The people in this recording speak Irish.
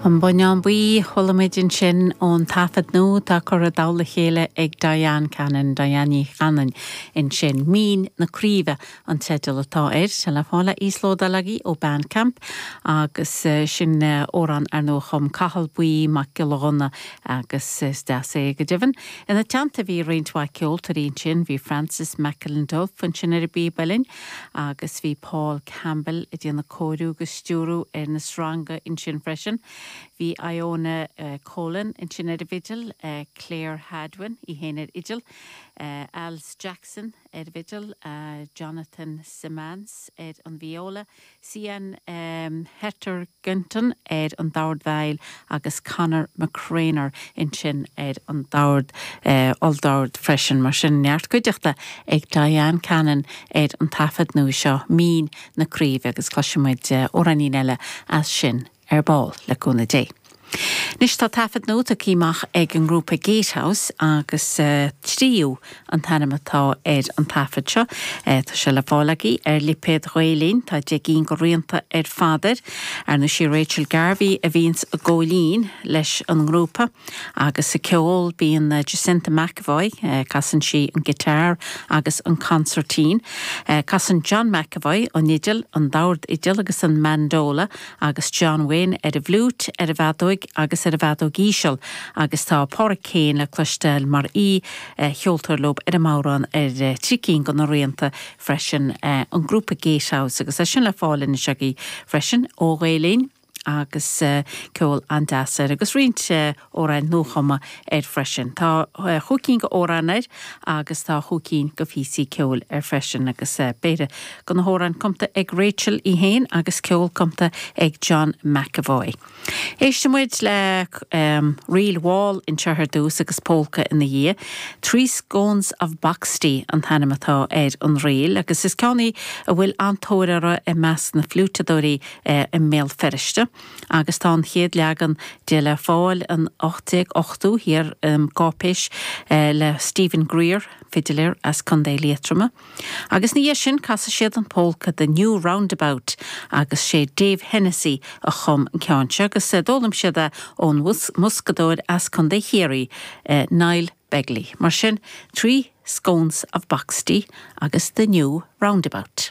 An Bonnán Buí, chualaimid ansin ón taifead nua atá curtha i dtoll a chéile ag Diane Cannon, Diane Ní Chanainn, ansin. Mín na Craoibhe an teideal atá air. Tá sé le fáil le híoslódáil agaibh ó Bandcamp agus sin amhrán ar ndóigh a chum Cathal Buí Mac Giolla Ghunna agus is deas é go deimhin. Ina teannta bhí roinnt mhaith ceoltóirí ansin, bhí Francis McIlduff ansin ar an bpíb uilleann, Agus bhí Paul Campbell ag déanamh cóiriú agus stiúrú ar na sreanga ansin freisin. Bhí Ioana Colan ansin ar an bhfidil, Clare Hadwen í fhéin ar fhidil, Alys Jackson ar an bhfidil, Jonathan Simmance ar an vióla, Sian Hetherington ar an dord veidhil agus Conor McCreanor ansin ar an dord, olldord freisin. Mar sin, neart cuideachta ag Diane Cannon ar an taifead nua seo, Mín na Craoibhe, agus cloisfidh muid amhráinín eile as sin. ar ball, le cúnamh Dé. Anois tá taifead nua tugtha amach ag an ngrúpa Gatehouse agus Tríú an t-ainm atá ar an taifead seo. Tá sé le fáil agaibh ar lipéad Ghael Linn. Tá deich gcinn de rianta ar fad air. Ar ndóigh 'sí Rachel Garvey a bhíonns ag gabháil fhoinn leis an ngrúpa agus ag ceol bíonn Jacinta McEvoy, casann sí an guitar agus an consairtín. Casann John McEvoy an fhidil, an dordfhidil agus an mandola. agus John Wynne ar an bhfliúit, ar an bhfeadóig agus ar an bhfeadóig íseal agus tá Pádraic Keane le cloisteáil mar aoicheoltóir leo ar an mbodhrán ar trí cinn de na rianta freisin, an grúpa Gatehouse agus tá sé sin le fáil anois agaibh freisin ó Ghael-Linn agus ceol an-deas air agus roinnt. amhráin nuachumtha air freisin. Tá chúig cinn d'amhráin air agus tá chúig cinn de phíosaí ceoil air freisin agus péire de na hamhráin cumta ag Rachel í fhéin agus ceol cumta ag John McEvoy. Éistfidh muid le ríl mhall anseo ar dtús agus Pólca ina dhiaidh. Three Scones of Boxty an t-ainm atá ar an ríl agus is ceann í a bhfuil an-tóir uirthi i measc na fliúiteadóirí i mBéal Feirste. agus tá an chéad leagan de le fáil in 1880 thiar i gcáipéis le Stephen Grier, fidiléir as Co. Liatroma, agus ina dhiaidh sin casfaidh siad an pólca The New Roundabout agus 'sé Dave Hennessy a chum an ceann seo agus d'fhoghlaim siad é ón mboscadóir as Co. Chiarraí, Niall Begley. Mar sin, Three Scones of Boxty agus The New Roundabout.